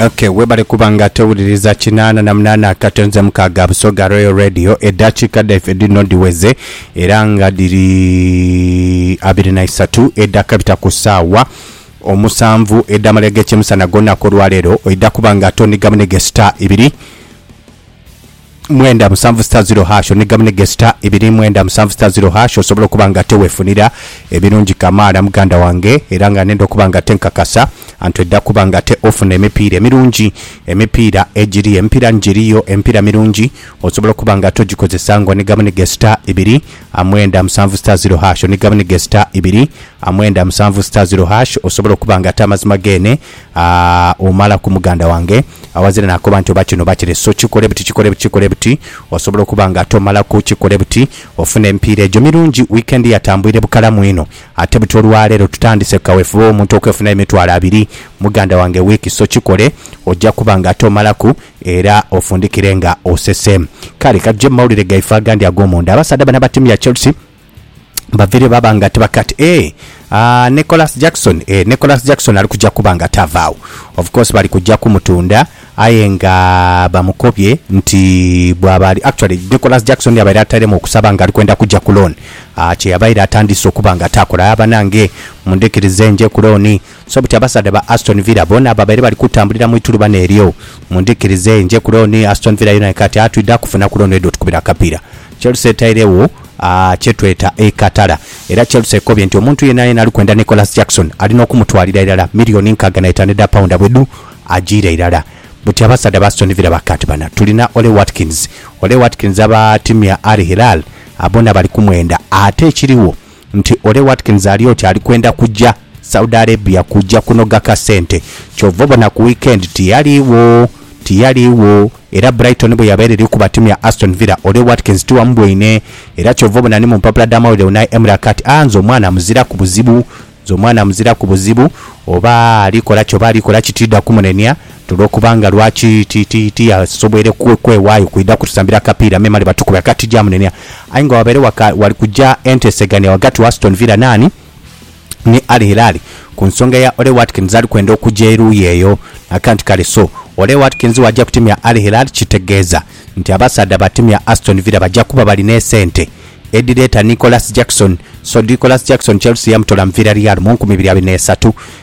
Ok webale kuba nga towuliriza kinaana na munaana akatonze mukaaga Busoga Royal Radio eddakiika dhaife dhino dhiweze era nga dhiri abiri na isatu edhakabita ku ssaawa omusanvu edh'amalya g'ekyemisana g'olunaku olwaleero oidha kuba nga tonigamunige star ibiri mwenda musanvu sita ziro hash one gamu ne gesita ibiri mwenda musanvu sita ziro hash osobola okuba nga ate wefunira ebirungi kamaala muganda wange era nga nenda okuba nga ate nkakasa anti oidha kuba nga ate ofuna emipiira emirungi emipiira egiri emipiira ni giriyo emipiira mirungi osobola okuba nga ate ogikozesa nga one gamu ne gesita ibiri mwenda musanvu sita ziro hash one gamu ne gesita ibiri mwenda musanvu sita ziro hash osobola okuba nga ate amazima geene omala ku muganda wange awazira nakoba nti oba kino oba kire so kikole buti kikole buti kikole buti osobola okuba nga tomalaku kikole buti ofune emipiira egyo mirungi weekend yatambwire bukalamu inho ate buti olwaleero tutandise ku kawefube womuntu okwefunira emitwalo abiri muganda wange week so kikole ojja kuba nga ate omalaku era ofundikire nga osese kale katuje mu mawulire gaife agandi agomunda abasaadha bano abatimu ya Chelsea baviire baba nga tibaki ati ee aa Nicholas Jackson ee Nicholas Jackson ali kuja kuba nga tavaagho. Of course bali kuja kumutunda aye nga bamukobye nti bwaba ali actually Nicholas Jackson yabaire atairemu okusaba nga ali kwenda kuja ku loan aa kye yabaire atandiise okuba nga taakola. Aa banange mundhikirize nje ku loan. So buti abasaadha ba Aston Villa boona babaire bali kutambulira mu itulubano eryo. Mundhikirize nje ku looni, Aston Villa yoona ekaati aa twidha kufuna ku looni edho otukubira akapiira. Chelsea etairegho aa kye tweta ekatala era Chelsea ekobye nti omuntu yeenayeena ali kwenda Nicholas Jackson alina okumutwalira irala milioni nkaaga na itaanu edha paunda bwe dhu ajiire irala. Buti abasaadha ba Aston Villa baka nti bana tulina Ollie Watkins. Ollie Watkins aba tiimu ya Al Hilal aa boona bali kumwenda ate ekirigho, nti Ole Watkins ali oti ali kwenda kuja Saudi Arabia kuja kunoga kasente kyova obona ku weekend tiyaligho tiyaligho era Brighton bweyabaire eri kukuba tiimu ya Aston Villa Ole Watkins tiwamubwoine era kyova obona ni mu mpapula dha mawulire Unai Emery akaa ati aah nze omwana muziraku buzibu nze omwana muziraku buzibu oba ali kolaki oba ali kolaki tidha kumunenia. Olwokuba nga lwaki ti, ti, tiyasoboire kwe, kwewaayo kwidha kutusambira kapiira memale batukube akati ja munenia. Aye nga wabaire waka, wali kuja entesegania ghagati wa Aston Villa n'ani? Ni Al Hilal, ku nsonga ya Ollie Watkins ali kwenda okuja eruuyi eyo. Naka nti, kale so, Ollie Watkins w'aja ku tiimu ya Al Hilal, kitegeeza nti abasaadha ba tiimu ya Aston Villa baja kuba bali n'esente edhireeta Nicholas Jackson. So Nicholas Jackson Chelsea yamutola mu Villareal mu nkumi ibiri abiri n'esatu,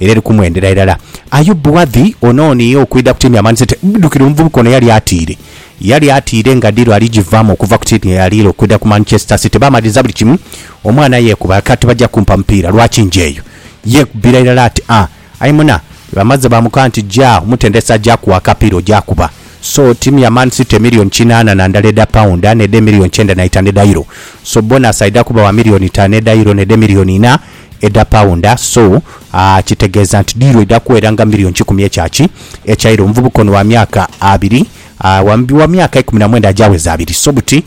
Era eri kumwendera irala. Aye Buadhi ono ooniigha okwidha ku tiini ya Man City, bdukire omuvubuka ono yali atiire. Yali atiire nga diiru ali givaamu okuva ku tiini ye yaliire okwidha ku Manchester City. Baamaliriza buli kimu, omwana yeekuba ati tibajja kumpa mupiira, lwaki njeeyo? Yeekubira irala ati, Ah, aye muna, bamaze baamukoba nti ja omutendesi aje akuwe akapiira oje akuba. So, tiimu ya Man City emillioni kinaana na ndala edha paunda n'edha emillioni kyenda na itaanu edha euro. So, bonus aidha kuba wa millioni itaanu edha euro n'edha emillioni inha. edha paunda so kitegeeza nti diiru eidha kuweera nga million kikumi ekya ki ekyaire omuvubuka ono wa myaka abiri wa myaka eikumi na mwenda agyaweza abiri so buti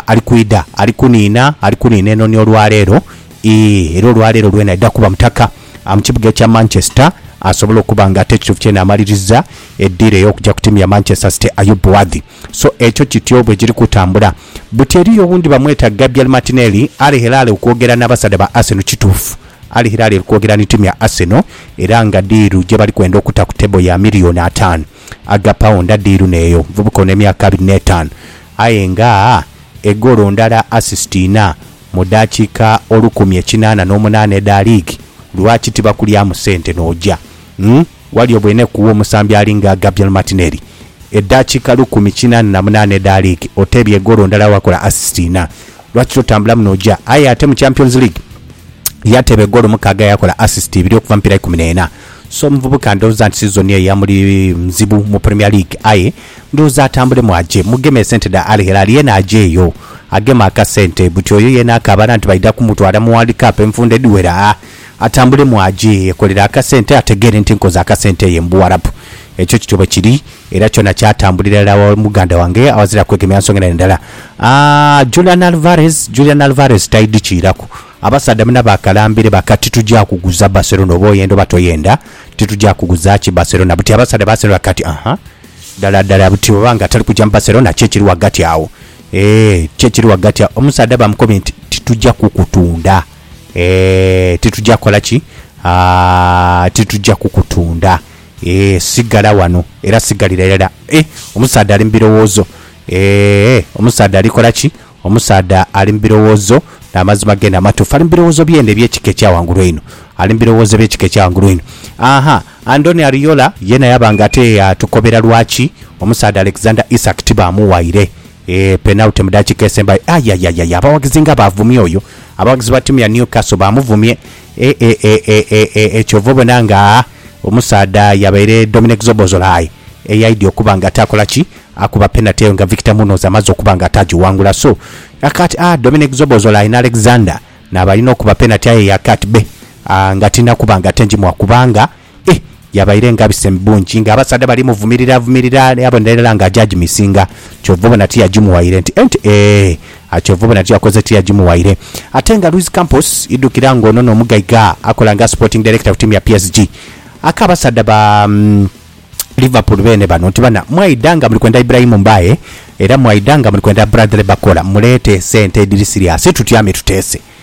ali kwidha ali kuniina ali kuniina eno ni olwaleero ii era olwaleero lwena aidha kuba mutaka mu kibuga ekya Manchester asobole okuba nga ate ekituufu kyene amaliriza eddiiro ey'okugya ku tiimu ya Manchester City Ayub Buwadhi. So ekyo kityo bwe kiri kutambula. Buti eriyo owundi bamweta Gabriel Martinelli, Ali Hilal okwogera n'abasaadha ba Arsenal. Kituufu, Al Hilal eri kwogera ni tiimu ya Arsenal era nga diiru gye bali kwenda okuta ku table ya miriyoni ataanu aga pawunda. Diiru n'eyo nvubuka ono emyaka abiri n'etaanu aye nga egoolo ndala, assist inha, mu dakiika olukumi ekinaana n'omunaana edha liigi. Lwaki tibakulyamu sente n'oja? Umm. Ghali obweneku omusambi alinga Gabriel Martinelli, edhakiika lukumi kinaana na munaana edha liigi, oteebye egoolo ndala wakola assist inha. Lwaki totambulamu n'oja? Aye ate mu Champions League yateeba egoolo mukaaga yakola assist ibiri okuva mu mipiira ikumi n'ena. So omuvubuka ndhowooza nti sizoni eyo yamuli nzibu mu Premier League aye ndhowooza atambulemu aje. Mugeme esente dha Al Hilal yeena ajeeyo ageme akasente. Buti oyo yeena akaabana nti baidha kumutwala mu World Cup enfunda edhiwera. atambulemu aje yekolere akasente ategeere nti nkoze akasente ye mu Buwarabu. Ekyo kityo bwe kiri era kyona kyatambulira irala wa muganda wange awazira kwegemya nsonga endala ndala. Aah Julian Alvarez, Julian Alvarez taidhikiiraku. Abasaadha muna bakalambire baka titugya kuguza Barcelona oba oyenda oba toyenda, titugya kuguza ki Barcelona. Buti abasaadha ba Arsenal baka ti aha, ddala ddala buti bw'oba nga tali kugya mu Barcelona ki ekiri ghagati agho? Eeh ki ekiri ghagati agho? Omusaadha bamukomye nti titugya kukutunda. Eeh titugya kola ki? Aah titugya kukutunda eeh sigala wano era sigalira irala eeh omusaadha ali mubirowoozo eeh omusaadha ali kola ki? Omusaadha ali mubirowoozo namazima gene amatuufu ali mubirowoozo byene ebyekika ekya wangulu einho ali mubirowoozo ebyekika ekya wangulu einho Ahaa Andoni Ariola yena yaba nga ate yatukobera lwaki omusaadha Alexander Isak tibamuwaire Eeh penalty mu dakika esembayo ayayayaya abawagizi nga bavumye oyo abawagizi ba timu ya Newcastle bamuvumye eeeeeeeeh kyova obona nga omusaadha yabaire Dominic Szoboszlai eyaidya okuba nga ate akola ki akuba penalty eyo nga Victor Munoz amaze okuba nga ate agiwangula so yakati aah Dominic Szoboszlai ne Alexander nabalina okuba penalty aye yakati bbe aah nga tinina kuba nga ate njimuwa kubanga Ih, yabaire ngabise mu bungi nga abasaadha bali muvumirira vumirira yabonera irala nga aja agimisinga kyova obona tiyagimuwaire nti enti eeh a kyova obona tiyakoze tiyagimuwaire ate nga Luis Campos idhukira nga ono n'omugaiga akola nga sporting director ku tiimu ya PSG aka abasaadha ba Liverpool beene bano nti bana mwaidha nga muli kwenda Ibrahim Mbaye era mwaidha nga muli kwenda Bradley Bacola muleete sente edhiri siriasi tutyame tuteese.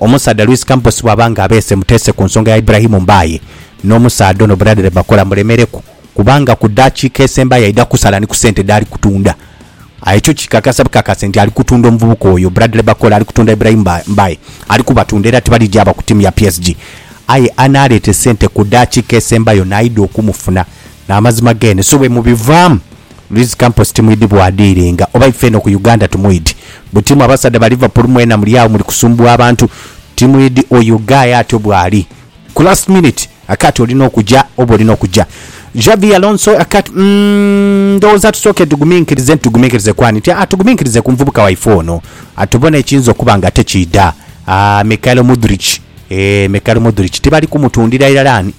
Omusaadha Luis Campos bwaba nga abeese muteese ku nsonga ya Ibrahim Mbaye, n'omusaadha ono Bradley Bakola mulemereku kubanga ku daakiika esembayo aidha kusala ni ku sente dhaali kutunda. Aye kyo kikakasa bukakase nti ali kutunda omuvubuka oyo, Bradley Bakola ali kutunda Ibrahim Mbaye. Ali kubatunda era tibali gyaba ku tiimu ya PSG. Aye anaaleeta esente ku daakiika esembayo naidha okumufuna. N'amazima geene. So bwemubivaamu. Luis Campos timwidi bwadiiringa oba ife eno ku Uganda tumwidi buti mwe abasaadha ba Liverpool mwena muli agho muli kusumbugha abantu timwidi oyo guy atyo bwali ku last minute akati olina okuja oba olina okuja Xavi Alonso akati umm ndowooza tusooke tuguminkirize nti tuguminkirize kwani nti aa tuguminkirize ku muvubuka waife ono atubone ekiyinza okuba nga ate kiidha aa Mikhailo Mudric eeh Mikhailo Mudric tibali kumutundira irala ani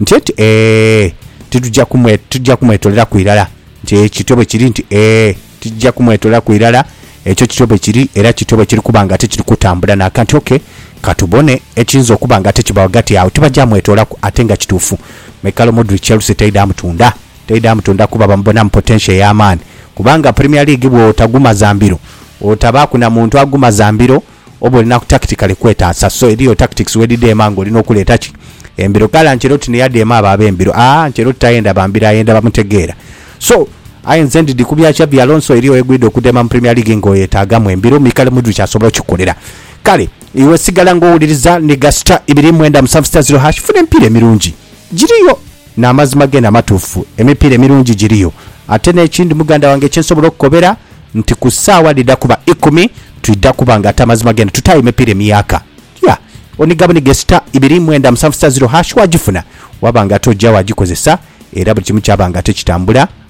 nti eti, Ee, titugya kumwe, tugya kumwetoleraku irala. Nti, E, kityo bwe kiri. Nti, Ee, titugya kumwetoleraku irala. Ekyo kityo bwe kiri, era kityo bwe kiri kuba nga tikiri kutambula naaka. Nti, Ok, ka tubone ekiyinza okuba nga tikibawo ghagati agho. Tibagya mwetoolaku. Ate nga kituufu, Michael Mudryk, Chelsea teidha mutunda. Teidha mutunda kuba bamubonamu potential ey'amaani. Kubanga Premier League bw'otagumaza mbiro, otabaaku na muntu agumaza mbiro, oba olina ku tactically kwetaasa so eriyo tactics wedidheema nga olina okuleeta ki? Embiro kale Ancelotti ni yadheema abo ab'embiro aah Ancelotti tayenda ba mbiro ayenda bamutegeera so aye nze ndidhi ku bya Xabi Alonso eriyo wegwidha okudheema mu Premier League nga oyetaagamu embiro Mikel Mudryk asobola okikolela kale iwe sigala nga owuliriza ni ga star ibiri mwenda musanvu star zero hash funa emipiira emirungi giriyo. N'amazima geene amatuufu, emipiira emirungi giriyo. Ate n'ekindi muganda wange kye nsobola okukobera nti ku saawa dhidha kuba ikumi twidha kuba nga ate amazima geene tutaayo emipiira emiyaaka. Yeah. Oniga buniga e star ibiri mwenda musanvu star zero hash waagifuna, waba nga ate oja waagikozesa era buli kimu kyaba nga ate kitambula.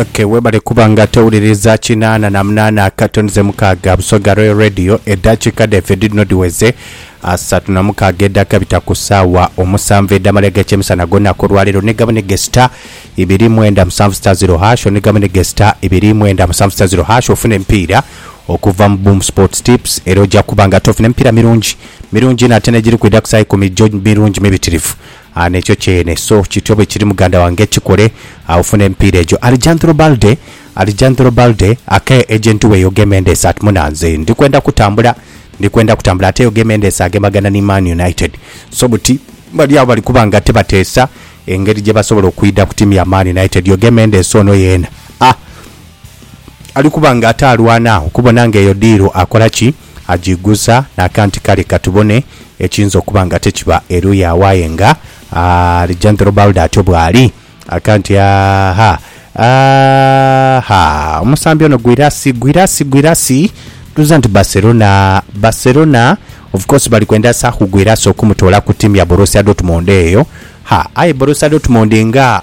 Ok webale kuba nga towuliriza kinaana na munaana akato nize mukaaga Busoga Royal Radio edhakiika dhaife dhidhino dhiweze asatu na mukaaga edhakabita ku saawa omusanvu edhamala egakyemisana gonaku olwaleero ni gamu ni gesita ibiri mwenda musanvu sita ziro hasho ni gamu ni gesita ibiri mwenda musanvu sita ziro hasho ofuna emipiira okuva mu Boom Sports Tips era ojja kuba nga tofuna emipiira mirungi mirungi inho ate negiri kwidha ku saa ikumi gyo mirungi mibitirivu A N'ekyo kyene, so kityo bwe kiri, muganda wange. Kikole, agho funa emipiira egyo. Alejandro Balde, Alejandro Balde, Aka eje nti weyo gemendeese ati muna nze ndi kwenda kutambula, ndi kwenda kutambula. Ate eyo gemendeese agemagana ni Man United. So buti bali agho bali kuba nga tibateesa engeri gye basobola okwidha ku tiimu ya Man United. Yo gemendeese ono yeena a ali kuba nga ate alwana okubona nga eyo diiru akola ki. agiiguza n'aka nti, Kale ka tubone ekiyinza okuba nga te kiba eruuyi agho aye nga Alijandhero Balda atyo bw'ali. Aka nti, Aha, aha, omusambi ono Guirassi, Guirassi, Guirassi! Ndhooza nti Barcelona, Barcelona! Of course bali kwenda Saku Guirassi okumutoola ku tiimu ya Borussia Dortmund eyo. Ha, aye Borussia Dortmund nga.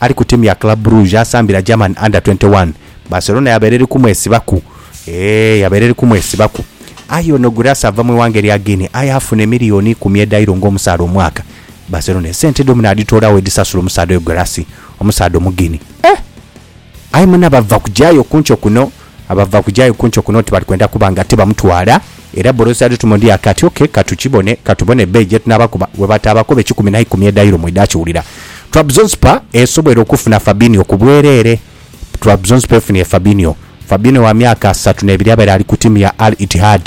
ali ku tiimu ya Club Brugge y'asambira German Under twenty one, Barcelona yabaire eri kumwesibaku eeh yabaire eri kumwesibaku aye ono Guirassy ava mu ighanga erya Guinea aye afuna emiliyoni ikumi edha Euro ng'omusaadha omwaka. Barcelona esente edho munaadhitoolagho edhisasula omusaadha oyo Guirassy, omusaadha Omuguinea eeh! Aye muna bava kugyayo kunkyo kuno Abava ku gyayo kunti okuno oti bali kwenda kuba nga tibamutwala, era Borosi adhutuma odi ake ati, Oke, ka tukibone, ka tubone ebbeeyi gye tunaabakoba. Bwe bataabakoba ekikumi na ikumi edayiro mwedhaakiwulira. Trabzonspor esobweire okufuna Fabinho ku bwereere Trabzonspor efunye Fabinho Fabinho wa myaka asatu n'ebiri abaire ali ku ttiimu ya Al Ittihad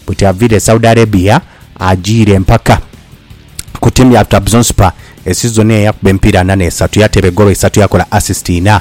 buti aviire e Saudi Arabia ajiire mpaka ku ttiimu ya Trabzonspor esizoni eno yakuba emipiira ana n'esatu, yateeba egoolo isatu yakola assist inha.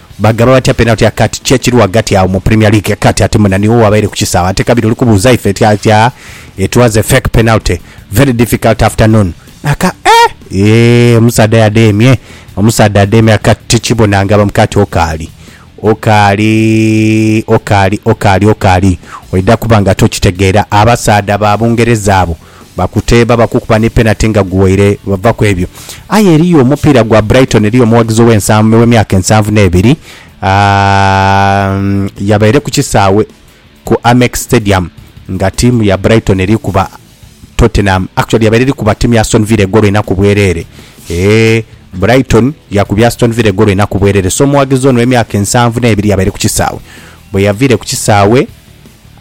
Bagaba batya penalty ya kati? Ki ekiri ghagati agho mu Premier League kati ate mwena niwo wabaire ku kisaawe ate kabiri oli kubuuza ife ti atya it was a fake penalty very difficult afternoon aka eh eeh omusaadha yademye omusaadha ademye aka tikibona nga bam kati okaali okaali okaali okaali okaali oidha kuba nga tokitegeera abasaadha ba Bungereza abo Bakuteeba, bakukuba ni penati nga guwaire bava ku ebyo. Aye eriyo omupiira gwa Brighton, eriyo omughagizi ow'emyaka ensanvu n'ebiri yabaire ku kisaawe ku Amex Stadium nga ttiimu ya Brighton eri kuba Tottenham. Actually yabaire eri kuba ttiimu ya Aston Villa egoolo ina ku bwereere. Eeh, Brighton yakubye Aston Villa egoolo ina ku bwereere. So omughagizi ono ow'emyaka ensanvu n'ebiri yabaire ku kisaawe. Bwe yaviire ku kisaawe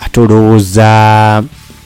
ate olowooza...